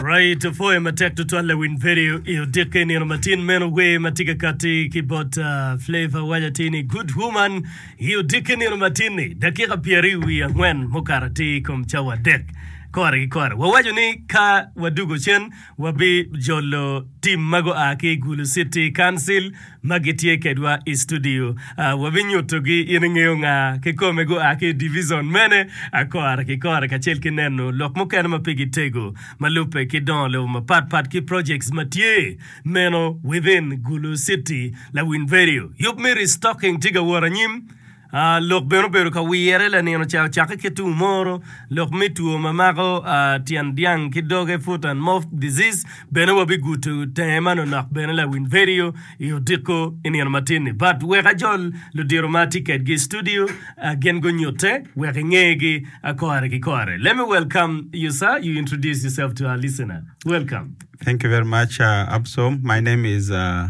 Right, poe matek tutwal lawin peri i odikke nino matin meno wer ma tye ka kati ki bot uh, Flavor waja ti ni Good Woman i odikke nino matin-ni dakika pyeri wi angwen mukato atir i kom cawa adek kore ki kore wawaco ni ka wadugo cen wabi jolo tim ma gua ki Gulu City Council ma gitye kedwa i studio. Wabinyutogi in ingeyo nga kikome, gua ki i divizon mene, akora ki kora, kacel ki neno lok mukene ma pigi tego ma lubbe ki dongo lobo mapat pat ki projects ma tye meno within Gulu City. Lawiny Radio, yub me restocking tye ka wot anyim. Lok bene obedo ka wire lanino ca ocakke ki tung moro lok me two ma mako tyen dyang ki doge foot and mouth disease bene wa biguto tenge manonok bene lawiny vedio i odiko i nino matin ni but wek ajol ludiro ma atye kedgi i studio gin gunyute wek inge gi kore ki kore let me welcome you sir you introduce yourself to our listener welcome. Thank you very much uh, Absom. My name is uh,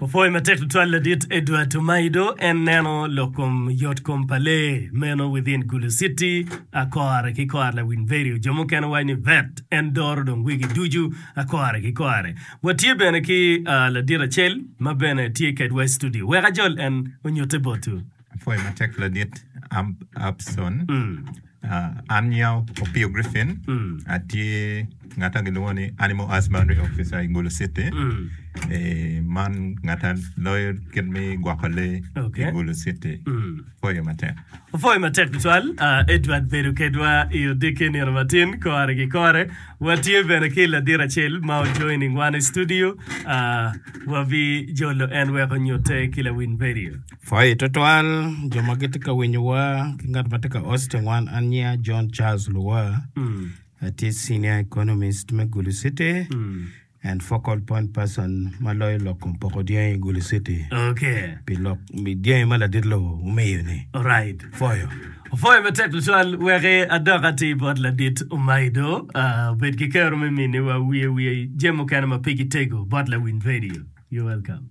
Opwoyo matek tutwal ladit Edward Tomaido en neno lok kom yot kom pa lee meno within Gulu City, Akore ki kore lawiny Verio jo mukene waco ni vet en doro dong wigi ducu Akore ki kore. Watye bene ki ladit acel ma bene tye kedwa i studio. Wek ajol en onyutte botwu. Apwoyo matek ladit Abson. An nyinga Opio Griffin, atye ngat ma gilwongo ni Animal Husbandry Officer i Gulu City. Eh, man ngat ma loyo kit me gwoko lee i Gulu City. Apwoyo matek. Apwoyo matek tutwal. Ah, Edward bedo kedwa i odiki nino matin, kore ki kore. Watye bene ki ladit acel ma o joining wan i studio. Ah, wabijolo en wek onyutte ki lawiny redio. Pwoyo tutwal jo ma gitye ka winyowa ki ngat ma tye ka host i wan. An nyinga John Charles Luwa. Atye Senior Economist me Gulu City and Focal Point Person ma loyo lok kom poko dyangi i Gulu City Okay. pi lok pi dyangi ma ladit lobo omiyo-ni. Alright. Pwoyo. Opwoyo matek tutwal. Wek adok atir bot ladit Omaido, ah, obed ki kero me miniwa wiye wiye jami mukene ma pe gitego bot lawiny redio. You're welcome.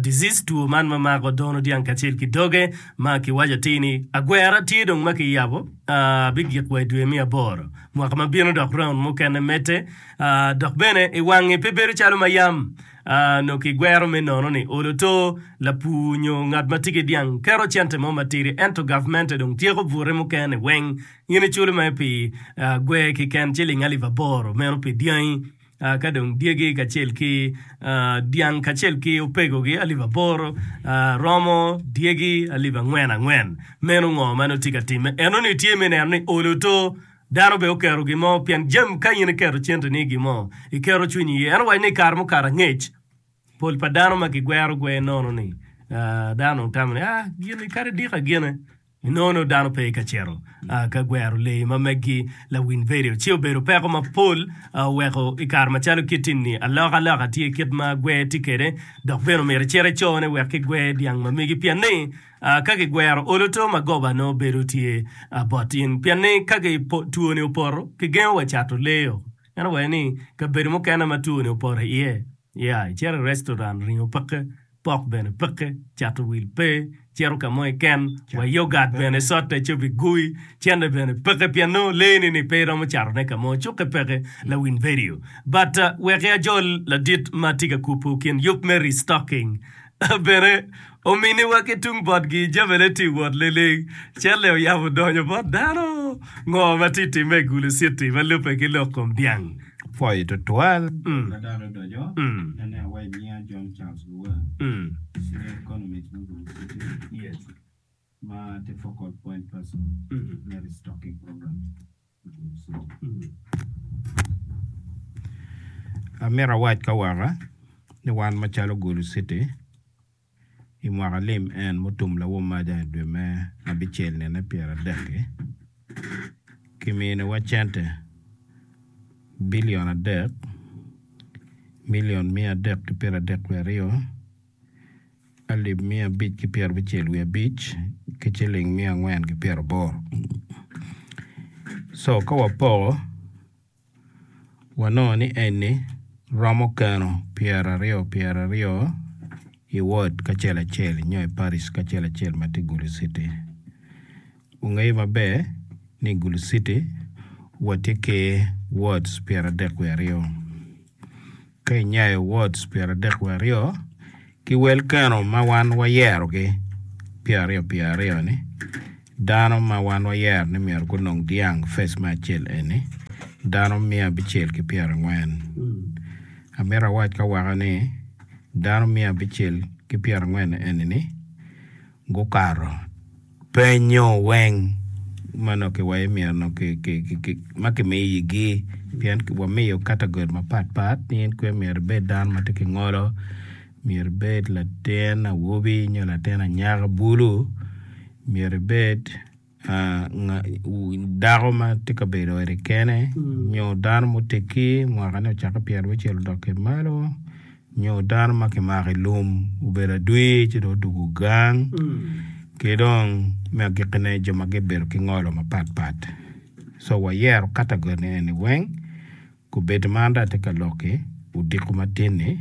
disease, two man ma mako dono dyang kacel ki doge ma kiwaco atir ni agwera tye dong ma kiyabo bigik wa i dwe me aboro mwaka ma bino dok raund mukene medde dok bene i wangi pe bedo calo ma yam nongo kigwero me nono ni olo to lapur nyo ngat ma tye ki dyang keto cente mo matidi ento gavmente dong tyeko bute mukene weng in iculo mere pi gwer kiken ciling alip aboro meno pi dyangi. ka dong dyegi kacel ki dyang kacel ki opegogi alip aboro romo dyegi alip angwen angwen. Meno ngo ma en otye ka timme? Enoni tye me neno ni olo oto. Dano bene oketo gin mo pien jami ka in iketo cente ni i gin mo, iketo cwinyi iye. En owaco ni i kare mukato angec, pol pa dano ma kigwero gwer nono ni dano dong tamo ni, ah gini kadi dika gene. Nino-nu dano pe ka cito ka gwero leyi ma meggi. Lawiny vedio ci obedo peko mapol oweko i kare macalo kit-ti-ni alokaloka tye kit ma gwer tye kwede dok bene omyero icit icone wek ki gwer dyang ma megi pien ni ka ki gwero olo to magoba nongo bedo tye bot in pien ni ka twoni opoto ki gengo wa cato leyo meno oweko ni kabedo mukene ma twoni opoto iye ya icito i restoran ringo peke pok bene peke, cato wil pe, cito ka mo iken wa yogat bene sote cobi gui, cente bene peke pien nongo lee ni ni pe iromo cato ne ka mo cuke peke lawin vedio but weki ajol ladit ma tye ka kupu kin yub me restocking bene omini wa ki tung bot gi jami ne tye wot liling celle oyabo donyo bot dano ngo ma tye time i gulu city ma lube ki lok kom dyang. pwoyo tutwal. Amito awac ka waka ni wan macalo Gulu citi, I mwaka lim en mutum lawomaja i dwe me abicel nine pyeradek-ki, kiminiwa cente bilion adek, milion miya adek ki pyeradek wiye aryo, alip miya abic ki pyerabicel wiye abic, ki ciling miya angwen ki pyeraboro. Co ka wapoko. Wanongo ni eni romo keno pyeraryo pyeraryo i wod kacel acel nyo i paric kacel acel ma tye i Gulu citi. Wungeyo maber ni i Gulu citi watye ki wods pyeradek wiye aryo. Ka inyayo wards pyeradek wiye aryo ki wel keno ma wan wayerogi pyeraryo pye aryo-ni, dano ma wan wayero ni myero gunong dyang fec me acel eni dano miya abicel ki pyerangwen. Amito awac ka waka ni dano miya abicel ki pyerangwen eni-ni, gukato penyo weng ma nongo kiwaco myero nongo ma kimiyigi pien wamiyo kategori mapat pat ni in kwe myero ibed dano ma tye ki ngolo, myero ibed latin awobi nyo latin anyaka bulu, myero ibed. Dako ma tye ka bedo eni kene nyo dano ma oteggi mwakane ocakke pyerabiryo abicel odok ki malo nyo dano ma kimako i lum obedo adwi ci dong odwogo gang ki dong me agikkine jo ma gibedo ki ngolo mapatpat so wayero katagoni eni weng. Kobedo man dong atye ka lok ki odiko matin-ni,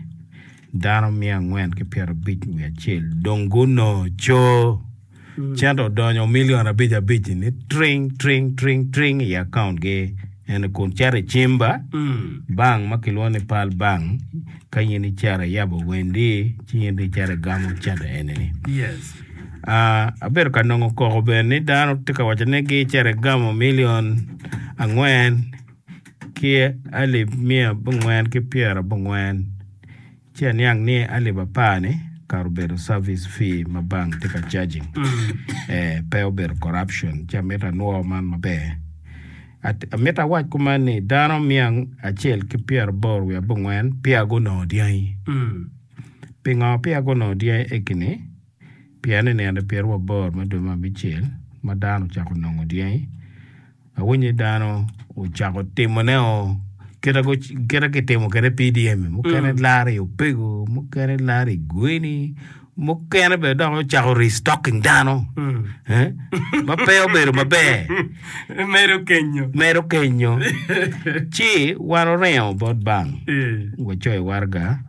dano miya angwen ki pyerabic wiye acel dong gunongo coo cente odonyo milion abic abic-ci ni tring tring tring tring i akauntgi ene kun cito i cimba bank ma kilwongo ni Pearl Bank ka in icito iyabo wendi ci in dong icito igamo cente eni-ni. Yes. Ah, abedo ka nongo koko bene ni dano tye ka waco ni gicito igamo milion angwen ki alip miya abongwen ki pyera abongwen ci aniang ni alip apar ni kare obedo service fee ma bank tye ka charging pe obedo corruption ci amito anwor man maber amito awac kuman ni dano miya acel ki pyera aboro wiye abongwen peya gunongo dyangi pingo peya gunongo dyangi egini? Pien i nino pyeri wa boro me dwe me abicel ma dano ocako nongo dyangi, awinyo ni dano ocako timoneo kite ma kitimo kwede PDM-mi, mukene laro i opego, mukene laro i gweni, mukene bene dok ocako restocking dano ma pe obedo maber. Medo kenyo. Medo kenyo. Ci wan oringo bot bank, wacoyo waraga.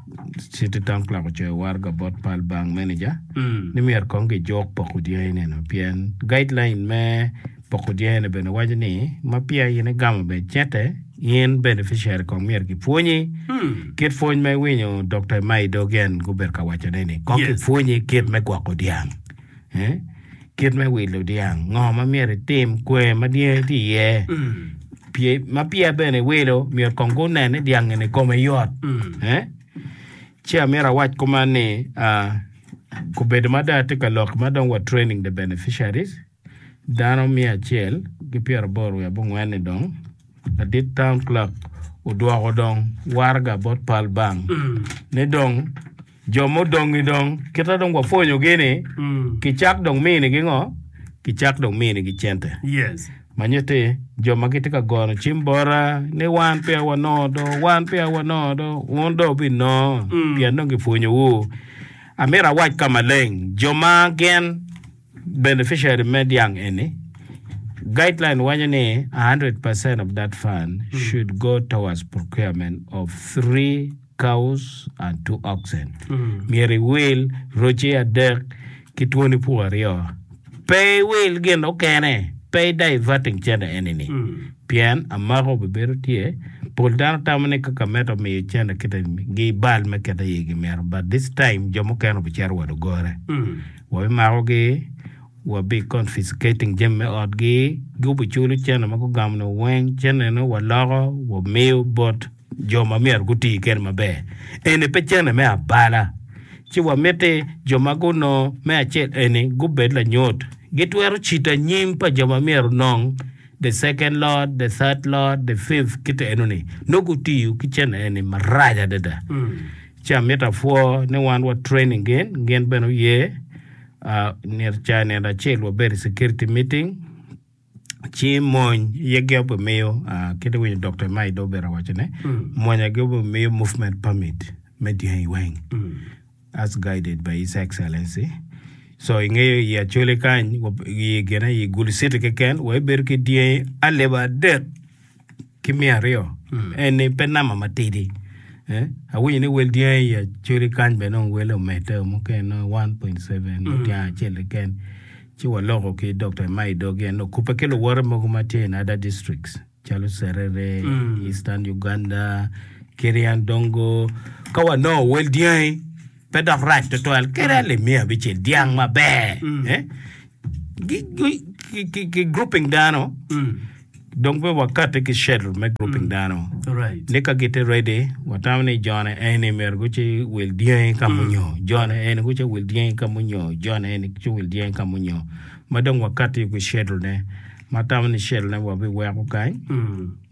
Citi Taun Club ocoyo waraga bot pal bank meneja ni myero kong gijuk poko dyangineno pien guideline me poko dyangine bene waco ni ma peya in igamo bene cente, in beneficiary kong myero gipwonyi kit pwony ma iwinyo Dokta Emma Idogian gubedo ka wacone ni kong Yes. gipwonyi kit me gwoko dyang. Kit me wilo dyang, ngo ma myero itim, kwer ma dyangi tye iye, pye ma peya bene iwilo myero kong gunen ni dyangi ni kome yot. Ci amyero awac kuman ni obedo ma dong atye ka lok ma dong wa training the beneficiaries dano miya acel ki pyera aboro wiye abongwen ni dong ladit town clerk odwoko dong waraga bot pal bang ni dong Jo mudong-ngi dong, kit ma dong wapwonyogi-ni, kicak dong minigi ngo? Kicak dong minigi cente. Ma nyutti, jo ma gitye ka gono cim bota ni, 'Wan peya wanongo do, wan peya wanongo do. Wun dong wubinongo, pien dong kipwonyowu. Amito awac ka maleng, jo ma gin. beneficiary me dyang eni, guideline waco ni 100 percent of that fund should go towards procurement of three cows and two oxen. Myero iwil roci adek ki twoni pur aryo. Pe iwil gin mukene, pe i diverting cente eni-ni. Pien amako bibedo tye, pol dano tamo ni ka kameto miyo cente kite-ni, gi bal me kete iye gimito, but this time jo mukene obicito wa dogore. Wabimakogi, wabi confiscating jami me otgi, gubiculo cene ma gugamo ni weng, ceneno waloko wamiyo bot jo ma myero guti kede maber. Eni pe cene me abala, ci wamiti jo ma gunongo me acel eni gubed lanyut. Gitwero cito anyim pa jo ma myero onong the second lot, the third lot, the fifth kite enoni, nongo gutiyo ki cene eni marac adada. Ci amito apwor ni wan wa training gin, gin bene oye. Uh, nit ca nit acel wabedi security meeting. Ci mony ye gi obe miyo uh, kiti winyo Dr. Mai do bera wacho ne. Mm. Mony agi obe miyo movement permit me dyango i weng. Mm. As guided by His Excellency. So ingeyo i acholi kany, i gine i Gulu City keken, wa ibedo ki dyangi aleba adek. ki miya aryo en ni pe nama matidi eh, awinyo ni wel dyangi i Acholi kany bene nongo wele omedde o mukene nongo 1.7 mo dyang acel keken ci waloko ki Dr. Emai Dogi en okubbe ki luwote mogo ma tye in other districts calo Serere, Eastern Uganda, Kirian Dongo ka wanongo wel dyangi pe dok rac tutwal kadi alip miya abicel dyang maber eh? Gi- gi- ki- ki- ki grouping dano dong pe wakati ki schedule me grouping dano Right. ni ka gitye ready watamo ni jone eni myero guci wil dyangi ka munyo jone eni guci wil dyangi ka munyo jone eni guci wil dyangi ka munyo ma dong wakati ki schedule ne ma tamo ni cellne wabiweko kany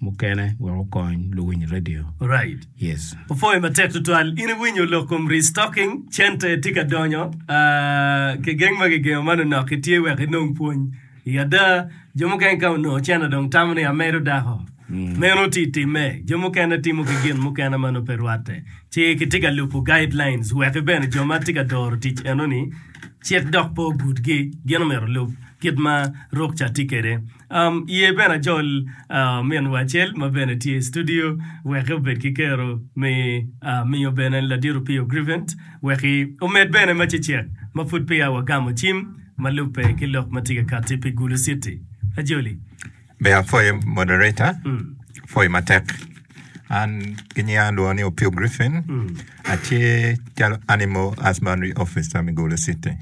mukene wek okony luwiny redio. Right. Yes. Opwoyo matek tutwal. In iwinyo lok kom restocking, cente tye ka donyo. Ah, kigeng ma kigengo man onok itye wek inong pwony. I ada, jo mukene ka onongo cente dong tamo ni amedo dako. Meno oti itime. Jo mukene timo ki gin mukene ma nongo pe rwatte. Ci kitye ka lubo guidelines wek bene jo ma tye ka doro tic enoni, Cit dok po butgi. Gin omyero olub kit ma ruk ca tye kwede. Um, ye bene ajol uh, ominwa acel ma bene tye i studio, wek obed ki kero me uh, miyo bene Ladit Opio Grivent, wek omed bene ma cecek ma pud peya wagamo cim ma lubbe ki lok ma tye ka katti pi Gulu City. Ajoli. Ber apwoyo moderator pwoyo matek. An ki nyinga alwongo ni Opio Griffin atye calo Animal Husbandry Officer me Gulu City.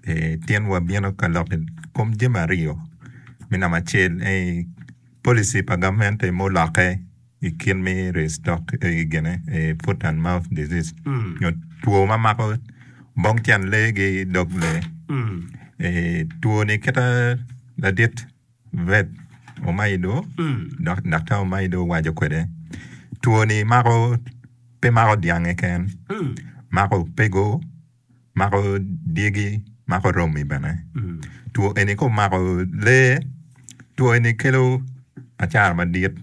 Ee, tyen wabino ka lok i kom jami aryo, me namba acel ei policy pa gamente mulokke i kit me ryeyo stock ei gine i foot and mouth disease nyo two ma mako bong tyen lee ki dog lee. Ee, two-ni kite ladit. Vet Omaido dok Daktar Omaido owaco kwede, Two ni mako pe mako dyang keken, mako opego, mako dyegi, mako romi bene. Two eni ka omako lee, two eni kelo acara madit,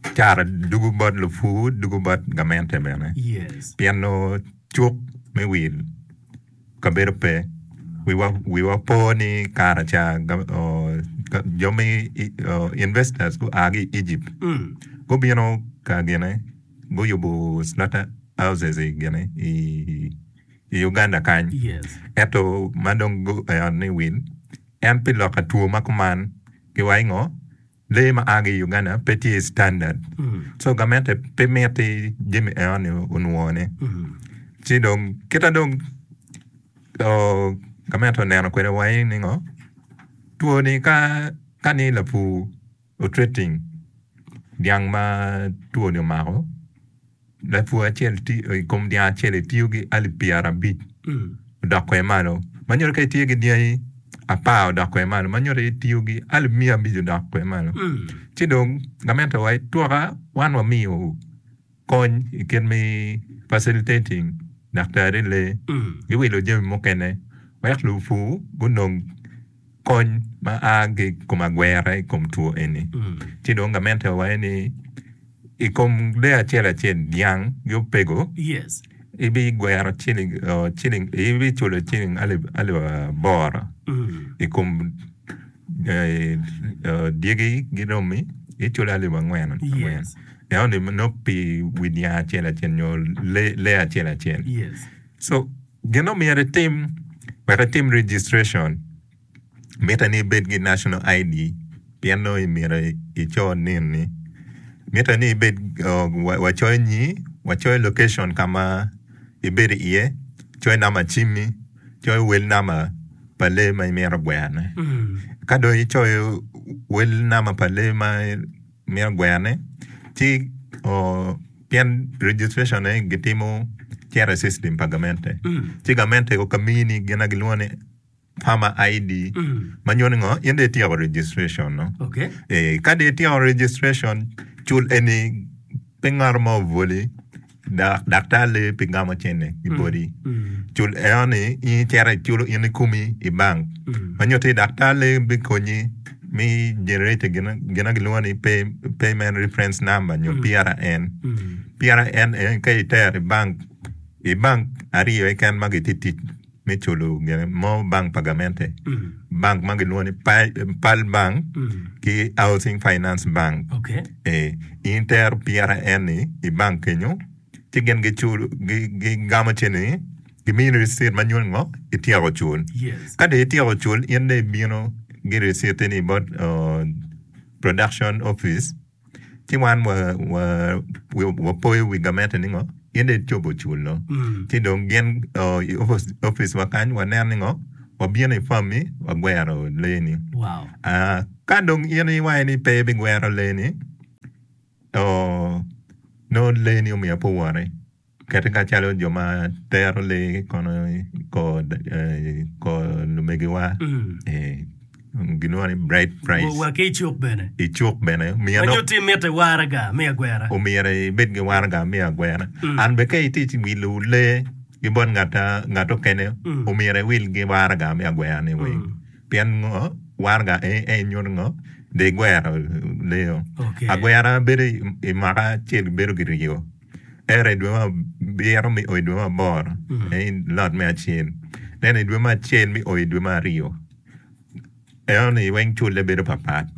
acara dugu bot lupur, dugu bot gamente bene. Pien nongo cuk me wil. kabedo pe, wiwa wiwa po ni kara ca jo me investors gua ki i Egypt gubino ka gine guyubo slaughter houses gine i Uganda kany ento ma dong gueyo ni wil en pi lok pa two ma kuman ki wa i ngo? Lee ma aa ki i Uganda pe tye standard so gamente pe miti jami eno ni onwongo ne ci dong kita dong gamente oneno kwede wa aye ningo two ni ka ni lapur o treating dyang ma two ni omako Lapur acel i kom dyang acel etiyo ki alip pyerabic odok kwede malo. Ma nyuto ka itye ki dyangi apar odok kwede malo ma nyuto itiyo ki alip miya abic odok kwede malo. Ci dong gamente wa itwoka wan wamiyo kony i kit me facilitating daktari lee ki wilo jami mukene wek lupur gunong kony ma a ki i kom agwera i kom two eni. Ci dong gamente wa waco ni i kom lee acel acel, dyang ki opego, ibigwero ciling ciling ibiculo ciling alip alip aboro i kom dyegi ki romi iculo alip angwen angwen ento ni nongo pi wi dyang acel acel nyo lee acel acel. Gin ma myero itim wek itim registration mitte ni ibed ki national ID pien nongo myero ico nin ni mitte ni ibed wacoyo nyi, wacoyo location ka ma ibedo iye, coyo namba cimmi, coyo wel namba pa lee ma imito gwerone. Ka dong icoyo wel namba pa lee ma mito gwene ci pien registration ne gitimo cito i system pa gamente ci gamente ko ka mini gin ma gilwongo ni farmer ID ma nyuto ni ngo in dong ityeko registration no ka dong ityeko registration cul eni pe ngat mo obwoli. dok daktar lee pi gamo cente i boti. Cul eno ni in icito iculo in kikomi i bank ma nyuto ni daktar lee bikonyi me generate gin ma kilwongo ni payment reference number nyo PRN. PRN eni ka itero i bank, i bank aryo keken ma gitye tic. me culo gin mo bank pa gamente, bank ma gilwongo ni Pearl Bank ki Housing Finance Bank. Okay. Eh, in tero pira en ni i bank kenyo ci gin giculo gi- gigamo ceni gimini risit ma nyuto ngo ityeko cul. Yes. Ka dong ityeko cul in dong ibino gi risit ni bot oh, production office. ci wan wapoyo wi gamente ni ngo in dong icobo culo ci dong gin i opic wa kany waneno ni ngo wabino i pam mi wagwero lee ni ka dong in iwaco ni pe ibigwero lee ni nongo lee ni omiyo pe owote. Kit macalo jo ma tero lee kono i kor lumegiwa gilwongo ni bride price. Wa ki i cuk bene. I cuk bene. Ma nyo ti mitte waraga me agwera. Omyero ibed ki waraga me agwera. An bene ka itye ka wilo lee ki bot ngat mukene, omyero iwil ki waraga me agwera-ni weng. Pien ngo? Waraga en nyuto ngo? Dong igwero lee-o. Agwera bedo i mwaka acel bedo ki ryo. ento i dwe ma abiro me o i dwe ma aboro aye lot me acel ento i dwe me acel me o i dwe ma aryo enoni weng culle bedo papat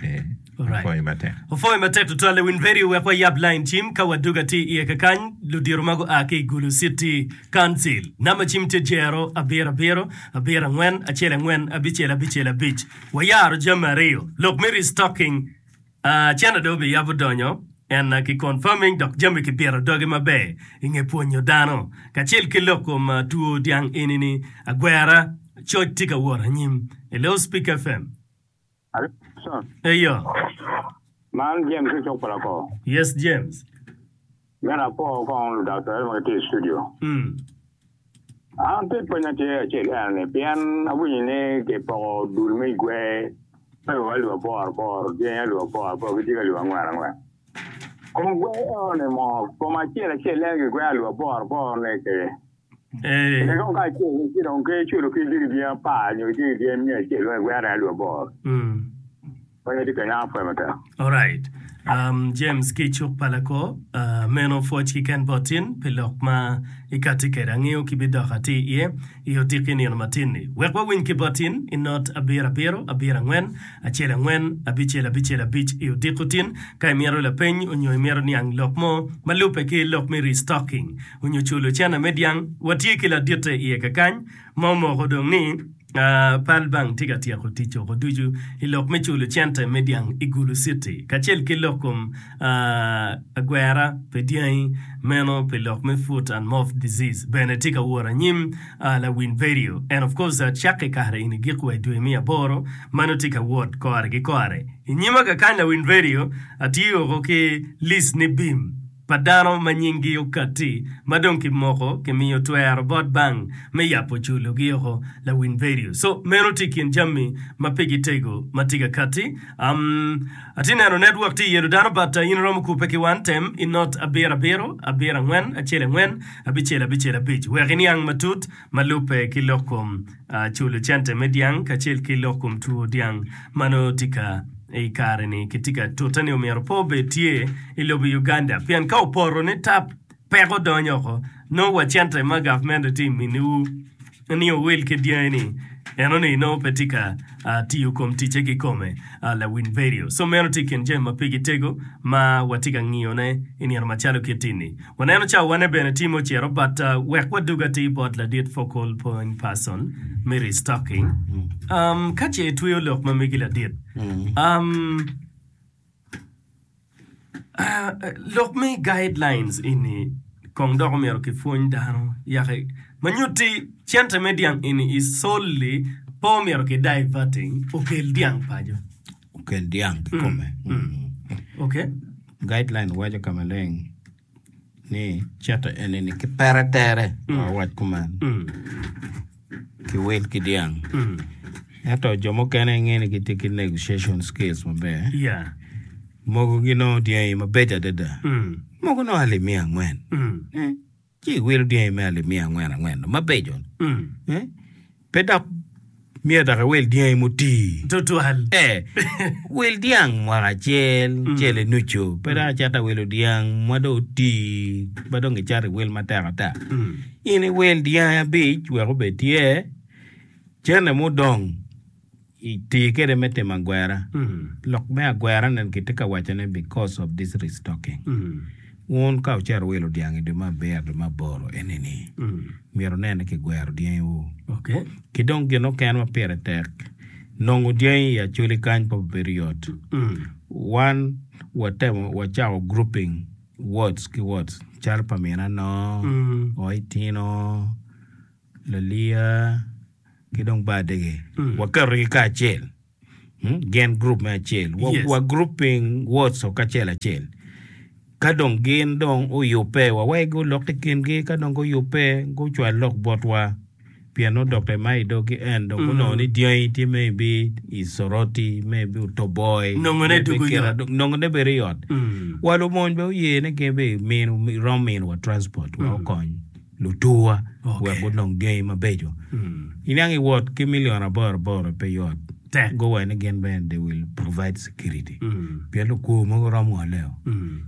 ee Alright. apwoyo matek Opwoyo matek tutwal Lewin Perry wek wayab lain cim ka wadwogo atir iye kakany ludito ma gua ki i Gulu City Council. Namba cim tye jero abiro abiro abiro angwen acel angwen abicel abicel abic. Wayaro jami aryo, lok me restocking Cene dong obiyabo donyo en ki confirming dok jami ki pito doge maber inge pwonyo dano kacel ki lok kom two dyang eni ni agwera coc tye ka wot anyim. E Loudspeaker FM. Alo Jackson. Eyo. Man James me cuk pa Lakor. Yes James. Me lapor kong ludaktari ma gitye i studio, an pe pwenya tye acel ene ni pien awinyo ni kipoko dul me igwe me lwak alip apor apor, dyangi alip apor apor ki dyegi alip angwen angwen. Kong gwe eno ni mo, kom acel acel ene gigweno alip apor apor-ni ki. Kidong kacel ki dong ki culo ki jiribiya apar nyo ki jiribiya miya acel wek egwere alip aboro. Meno aye tye ka yam apwaya matek. Alright. Um, James ki cuk pa lako, ah, meno pwoc kiken bot in pi lok ma ikatti kede. Angeyo ki bidok ati iye i odiki nino matin-ni. Wek wawiny ki bot in i not abiro abiro, abiro angwen, acel angwen, abicel abicel abic i odiko tin, ka imito lapeny onyo imito niang lok mo ma lubbe ki lok me restocking. onyo culo cene me dyang, watye ki laditte iye kakany ma omoko dong ni Pearl Bank tye ka tyeko tic oko ducu i lok me culo cente me dyang i Gulu Citi kacel ki lok kom agwera pi dyangi meno pi lok me Foot and Mouth Disease bene tye ka wot anyim Lawin Verio and of course cakki kare eni giko wa i dwe me aboro meno tye ka wot kore ki kore inyima kakany Lawin Verio atiyo oko ki list ni bim. pa dano ma nyinggi okatti ma dong kimoko kimiyo twero bot bank me yabo julogi oko lawiny vedio so meno tye ikin jami ma pigi tego ma tye ka katti um atye neno network tye yelo dano but in iromo kupe ki wan tem inot abiro abiro abiro angwen acel angwen abicel abicel abic wek iniang matut ma lubbe ki lok kom culo cente me dyang kacel ki lok kom two dyang ma nongo tika i kare-ni ki tika tute-ni omyero pe obed tye i lobo Uganda pien ka opoto ni tap peko odonyo oko nongo wa cente ma gavment tye miniwu ni owil ki dyangi-ni enoni nongo pe tika tiyo kom ticce kikome. La Winverio, Som meno tye i kin jami ma pigi tego ma watye ka ngiyone i nino macalo kiti-ni. Waneno cawa wane bene tye ma ocito but wek wadog atir bot ladit focal pony, person, me restocking, Ka ce itweyo lok ma megi ladit, Lok me guidelines eni kong dok omyero ki pwony dano yako ma nyutti cente me dyang eni i solli pe omyero ki diverting okel dyang paco okel dyang kikome ok guideline waco ka maleng ni cito enini ki pere tere mm. awac kuman mm. ki wil ki dyang mm. ento jo mukene nge ni gitye ki negotiation skills maber yeah. mogo ginongo dyangi mabeco adada mm. mogo nongo ali miya angwen mm. eh, ci iwilo dyangi me ali miya angwen angwen mabeco mm. eh? Pe dok myero dok iwil dyangi mutii. Tutwal. E, wil dyang mwaka acel, cele nucu. Pe dok icit dok iwilo dyang ma dong otii, ma dong icato iwil matek ata. In iwil dyangi abic wek obed tye, cene mudong I tir kede me timo agwera, lok me agwera nen ki tye ka waco ne because of this restocking wun ka wucero wilo dyang i dwe me abiro, dwe me aboro eni ni myero wunen ni ki gwero dyangi wu. Ki dong gin oken ma pire tek, nongo dyangi i Acholi kany pe obedo yot. Wan wa temo wa cako grouping wards ki wards calo pa min anoo, oo itino. Laliya ki dong ba adege waketogi kacel gin gurup me acel wa gurup ping words o kacel acel ka dong gin dong oyubbe wa wai gulok ki kingi ka dong guyubbe gucwal lok botwa pien nongo doctor ma i dogi en dong onongo ni dyangi tye maybe i Soroti maybe Otoboy Nongo ne dwogo i ot. nongo ne bedo i ot wa lumony bene oye ni gin bene i mino rom mino wa transport wa okony luturwa wek gunong gangi mabeco. Iniang i wot ki million aboro aboro pe yot. Tek go wa ni gin bene they will provide security pien lukur mogo rom ngoleo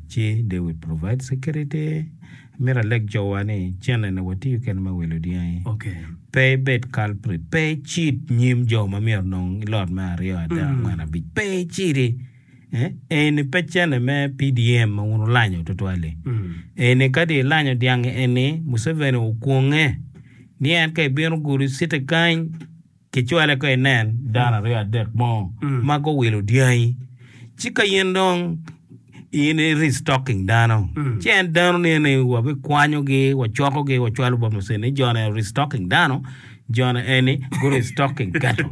ci they will provide security. Amito aleg jo wa ni cene ne watiyo kene me wilo dyangi pe ibed culprit pe icid nyim jo ma myero nong ilot me aryo adek angwen abic pe icidi. Eni pe cene me PDM ma wun wulanyo tutwal-li. Eni kadi ilanyo dyangi eni, Museveni okwonge ni en ka ebino gudo citi kany, kicwale ka inen dano aryo adek mo ma guwilo dyangi, ci ka in dong in i restocking dano, ci en dano-ni eni wabikwanyogi, wacokogi, wacwalo bot Museveni ni jo-ni restocking dano. Jona eni gure is talking gato.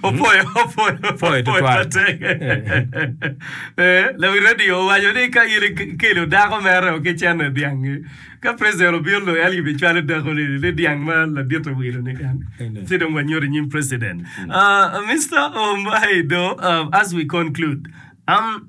Opwoyo opwoyo Pwoyo tutwal. matek. Eh, Lawi radio owaco ni ka in ikelo dako mere ki cene dyangi, ka president obino lo en gibi cwalo dako ni ni dyang ma ladit owilo ni en. Amen. Ci dong wanyuto i nyim president. Uh, Mister Omaido, uh, as we conclude, um,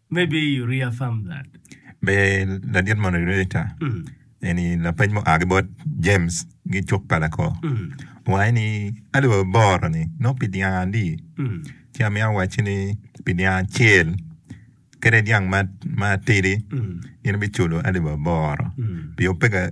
Maybe you reaffirm that. Be ladit Moderator, eni lapeny mua ki bot James gi cuk pa lako. Owaco ni alip aboro ni nongo pi dyang ali. Ci amiyo awacci ni pi dyang acel kede dyang matidi in ibiculo alip aboro. Pio peka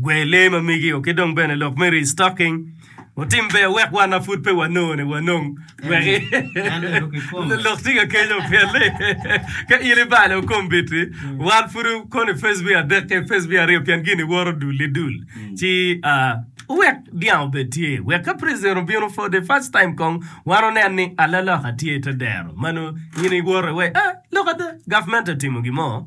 Gwe lee ma migio ki dong bene lok me restocking otim ber wek wan ma pud pe wanone wanong wek lok tye ka kenyo pien ni ka in ibalo kombit-ti wan pud kono i pacebik adek ki pacebik aryo pien gini woto dul ki dul ci wek dyang obed tye wek ka president obino for the first time kong wan onen ni alaloka tye i te dero ma nongo in iwoto iwaci lok ada gavment etimo gin mo